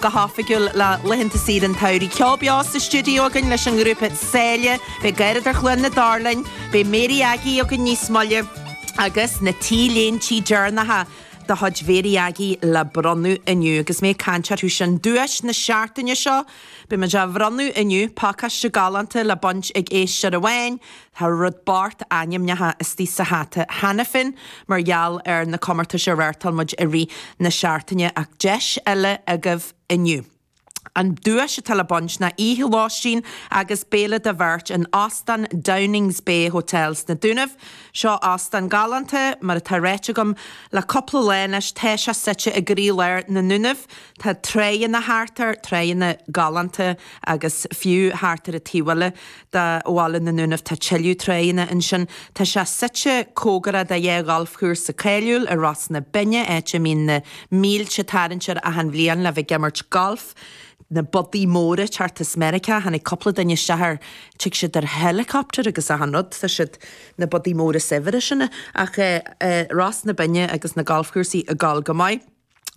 Go hoifigiúil le laethanta saoire an tsamhraidh. Ceol beo sa stiúideo againn leis an ngrúpa Seile. Beidh Gearóid ar Chluain na Dartlainne, beidh Mary Aggie againn níos moille agus na T-léintí deireanacha de chuid Mhary Aggie le bronnadh inniu. Agus mé ag caint orthu sin duais na seachtaine seo, beidh muid á bhronnadh inniu, pacáiste galánta le baint ag éisteoir amháin Tá rud beag ainmneacha istigh sa hata cheana féin mar gheall ar na comórtais a reáchtáil muid i rith na seachtaine ach deis eile agaibh inniu. An duais atá le baint ná oíche lóistín agus béile do bheirt in Óstán Downings Bay Hotel sna Dúnaibh. Seo óstán galánta, mar atá ráite agam le cúpla lá anois, tá sé suite i gcroílár na nDúnaibh, Tá tráigheanna thart air, tráigheanna galánta agus fiú thart ar an taobh eile de bhaile na nDúnaibh tá tuilleadh tráigheanna ansin. Tá sé suite cóngarach do dhá ghalfchúrsa cáiliúla, i Ros na Binne, áit a mbíonn na mílte tarraingt air achan bhliain le bheith ag imirt gailf, na bodaí móra thart as Meiriceá, tháinig cúpla duine isteach air, tig siad ar helicopter agus achan rud, tá siad, na bodaí móra saibhre sin, ach eh, eh, Ros na Binne agus na galfchúrsaí ag dul go maith.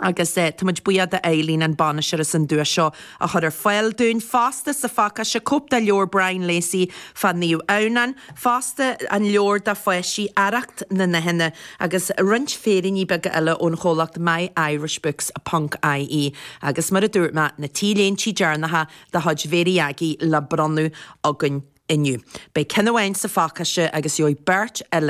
agus táimid buíoch do Eileen, an bainisteoir, as an duais seo a chur ar fáil dúinn. Fosta sa phacáiste, cóip de leabhar Brian Lacey, fá Naomh Adhamhnán. Fosta an leabhar do pháistí, Arracht na nDathanna, agus roinnt féiríní beaga eile ón chomhlacht myirishbooks ponc ie, agus mar a dúirt mé, na T-léintí deireanacha de chuid Mhary Aggie le bronnadh againn inniu. Beidh ceann amháin sa phacáiste agus gheobhaidh beirt eile,